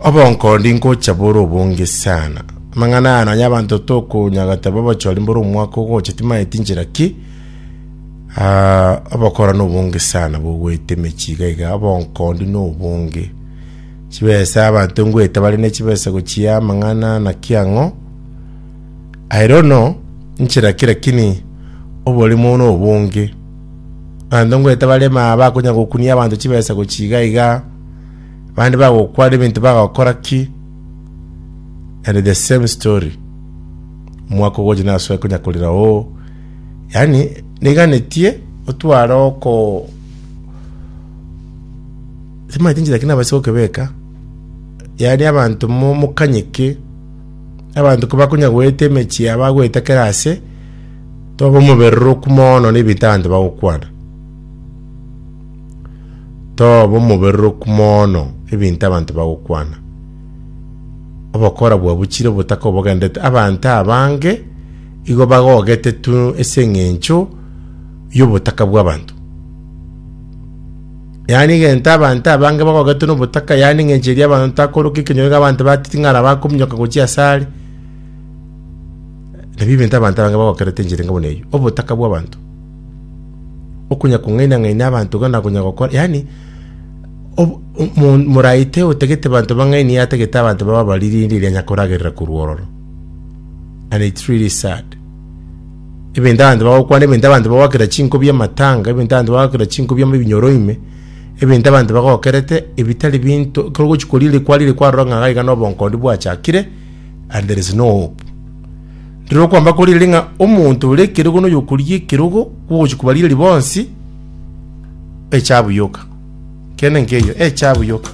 Obonkondi ngocha bore obonge sana. Amang'ana aya nonya abanto tokonyagata babochori mbore omwaka ogocha timaeti njera ki Ah, obokora na obonge sana bogoeta emechi iga iga obonkondi na obonge chibesa abanto ngoeta bare ne chibesa gochia amang'ana na kiang'o I don't know nchera ki lakini oborimo na obonge abanto ngoeta bare ma bakonya gokunia abanto chibesa gochia iga iga Abande bagokwara ebinto bagokora ki? And the same story. Omwaka ogocha nasoe konya korira oo. Yaani niganetie otware oko Simanyete inchera ki nabase gokebeka. Yaani abanto mo- mokanyeke abanto kobakonya goeta emechie yabo agoeta kera ase toba omobererwa okumono na ebinto abanto bagokwana. Toba omobereroku mono ebinto abanto bagokwana. Obokora bwabo chire obotaka obogenderete abanto abange igo bagogete tu ase eng'encho y'obotaka bw'abanto. Yaani egento abanto abange bagogete n'obotaka yaani eng'encho eria abanto takoroka ekenyoro iga abanto batete ng'ara bakominyoka gochia ase are. Nabio ebinto abanto abange bagokerete enchera enga buna eyio, obotaka bw'abanto. okunya kong'aina-ng'aina abanto iga na konya gokora, yaani ob- omo- moraite otagete abanto bang'ainie atagete abanto baba abaririinde eria anya koragerera korwa ororo and it's really sad ebinto abanto bagokwana ebinto abanto bagoakera chinko bia amatanga ebinto abanto bagoakera chinko bia ebinyoro ime ebinto abanto bagokerete ebitari binto ekero ogochi koriri kwariri kwarora ng'a iga na obonkondi bwachakire and there is no hope Rirorio okwamba koriire ng'a omonto ore ekerogo na oyokoria ekerogo kw'ogochia kobarigeria bonsi echabu yoka. Ekiagera nenkeyio, echabu yoka.